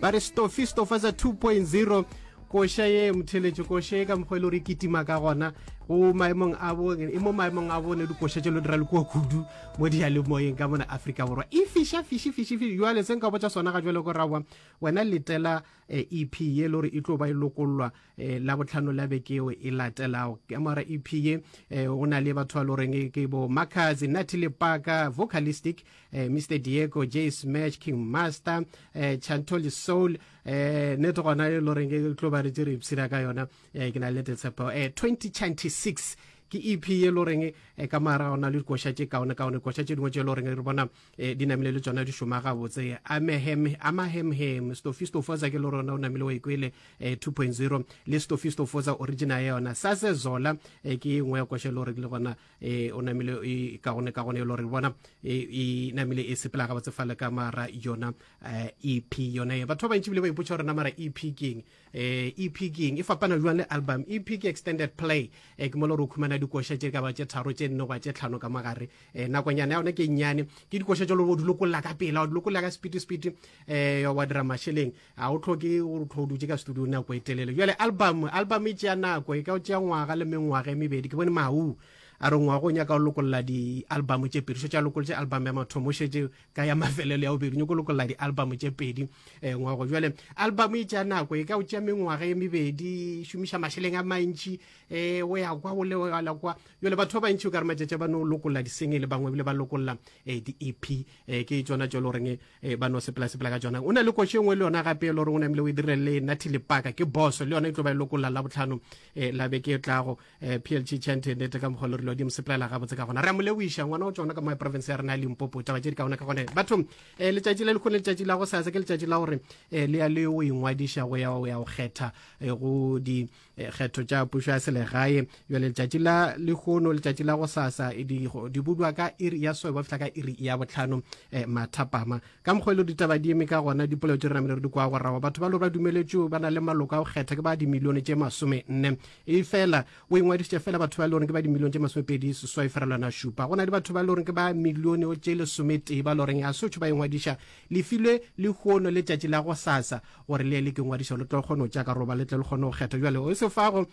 ba re stofi stofa sa 2.0 koša ye motheletše koša ye ka mokgwa e le gore e kitima ka gona o maemong a bone e mo maemong a bone dikoša tše lo dira le kua kudu mo diyalemoyeng ka mona aforika borwa e fiša fiši fiši fiši jale se nka botsa sona ga jale ko rawa wena letela ep eh, e ye le gore e tlo ba e lokollwa eh, la botlhano la beke eo e latelago ka mora ep ye eh, o na le batho ba le goreng ke bo markers nati le paka vocalistic eh, mr diego j smash king master eh, chantoli soul eh, nete gona e lo reng ke tlo ba re tse re ipshira ka yona eh, ke na le nete tshepo eh, 2026 ke ep ye lo reng eh, ka mara ona le dikoša tše kaone kaone koša tše dingwe tše lo reng re bona eh, di namile le tsona di šoma gabotse amahemhem stofistofosa ke lo rona o namile wa ikwele 2.0 eh, le stofistofosa original ya yona sase zola ke e nngwe ya koša lo reng le gona e o namile e ka gone ka gone e lore bona e, e namile e sepela ga batse fale ka mara yona ep e yona e batho ba bantši bile ba ipotsa gore na mara ep keng ep keng e fapana jwang le album ep ke extended play e ke mole gore o khumana dikoša tše ka ba tše tharo tše nne goba tše tlhano ka magare um nakonyana ya yone ke nnyane ke dikoša tša lore o di lokolla ka pela o di lokolla ka spiti spiti um wa dira mašeleng ga o tlhoke gore o tlho o dutse ka studio nako e telele jale album album e tšea nako e ka o tšea ngwaga le mengwaga e mebedi ke bone mau a re ngwago o nyaka o lokolola di-album tše pedi so tša lokolotše album ya mathomo šetse ka ya mafelelo ya bobedi nyako lokolola di-album tše pedi um eh, ngwago jale album e tšea nako e ka o tšea mengwaga e mebedi šomiša mašeleng a mantši um o ya kwa o leala kwa jale batho ba bantši o ka re matšatša ba no lokolola disengele bangwe bile ba lokolola um eh, di-ep e ke tsona tšo le goreng e ba no sepela sepela ka tsona o na le koši e nngwe le yona gape e le gore o namile o e direle le nathi lepaka ke boso le yona e tlo ba e lokolla la botlhano e la beke e tlago e plg chante nete ka mokgwa le rile odimo sepelela gabotse ka gona re mo leboiša ngwana o tsona ka mo province ya rena ya limpopo taba tše di ka gona ka gone batho e letšatši la lekgone letšatši la go sasa ke letšatši la gore e le ya le o ingwadiša go ya go ya go kgetha go di Eh, kgetho tša pušo ya selegae jale letšatši la lehono letšatši la go sasa eh, di budwa ka iri ya soe ba fihla ka iri ya botlhano eh, mathapama ka mokgwa e le ditaba di eme ka gona dipolao tše re namele re di kwa gorawa batho ba lo ba dumeletšeo ba na le maloko a go kgetha ke ba dimilione tše masome nne e fela o ingwadišitše fela batho ba e le goreng ke ba dimilione tše masome pedi seswai ferelwana šupa go na le batho ba e le goreng ke ba milione o tše lesometee ba e le goreng a sotho ba ingwadiša lefilwe lehono letšatši la go sasa gore le ke ngwadišo le tlo kgona go tšea karoba le tle le kgone go kgetha jale o se fago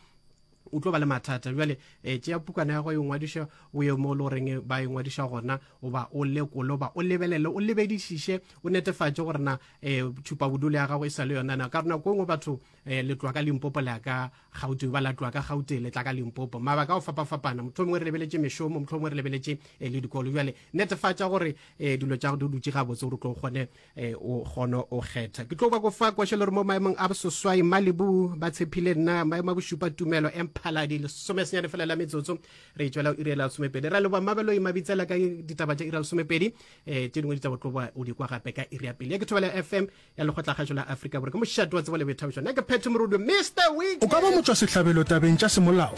o tlo ba le mathata jale e tšea pukana ya go e ngwadiša o ye mo le goreng ba e ngwadiša gona o ba o lekole o ba o lebelele o lebedišiše o netefatše gore na um tšhupa bodule ya gago e sa le yona na ka rona ko ngwe batho um letlwa ka limpopo le ya ka gaute ba latlwa ka gaute le tla ka limpopo mabaka a go fapafapana motlho mongwe re lebeletše mešomo motlho mongwe re lebeletše um le dikolo jale netefatša gore um dilo tša go di dutše gabotse gore o tlo kgone e o kgono o kgetha ke tlo kwa go fa kwešelo re mo maemong a bososwai malibu ba tshephile nna maemo a bošupa tumelo emphaladi lesomesenyane fela la metsotso re e tšwela o irela lesomepedi ra leboa mabeloi mabitsela ka ditaba tša ira lesomepedi um eh, tše dingwe di tsa botloboa o di kwa gape ka iri ya pele ya ke thobela fm ya lekgotlakgašo la afrika bore ke mošato wa tsebo le boithabišo nna ke phetho morudu mr week o ka ba motšwasehlabelo tabeng tša semolao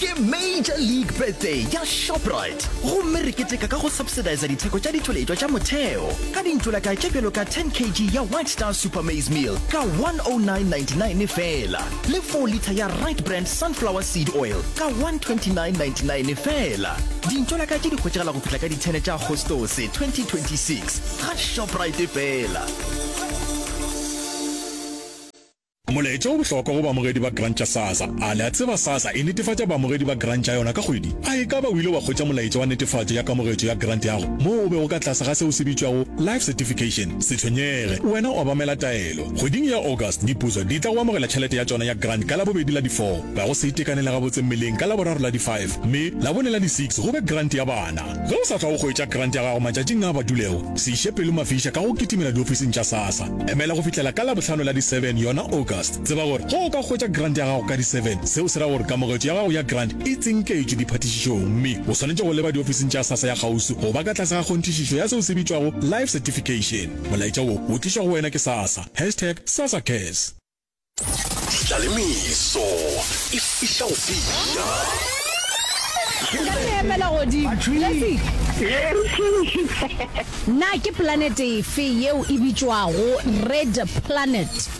Ke Major League Birthday ya Shoprite gomme re keteka ka go subsidisa ditheko tša ditšweletšwa tša motheo ka dintšolakae tše bjalo ka 10 kg ya White Star Super Maize Meal ka 109.99 fela. le 4 litha ya right brand sunflower seed oil ka 129.99 fela dintšo la ka tše di hwetšegela go fihla ka ditshene tša agostose 2026 ga shoprite fela Molaetša o bohlokwa go baamogedi ba grant ya SASSA. A le a tseba SASSA e netefatša baamogedi ba grant ya yona ka kgwedi? A e ka ba o ile wa hwetša molaetša wa netefatšo ya kamogetšo ya grant yago moo o bego ka tlase ga se o se bitšwago life certification? Se tshwenyege, wena o obamela taelo. Bofelo. Kgweding ya August, dipuso di tla go amogela tšhelete ya tšona ya grant ka Labobedi la di 4, ga go se itekanele gabotse mmeleng ka Laboraro la di 5, mme Labone la di 6 go be grant ya bana. Ge o sa tla go hwetša grant ya gago matšatšing a a badulego, se iše pelo mafiša ka go kitimela diofising tša SASSA. Emela go fihlela ka Labohlano la di 7, yona August. Tseba gore ge o ka hwetša grant ya gago ka di 7, seo se ra gore kamogetšo ya gago ya grant e tsinketšwe diphathišišong mme o swanetše go leba diofising tša SASSA ya kgauswi go ba ka tlase ga kgonthišišo ya seo se bitšwago Life Certification. Molaetša wo o tlišwa go wena ke sasa, hashtag sasacares. Ditla le meso e fihla go fihla. Na ke planete efe yeo e bitšwago Red Planet?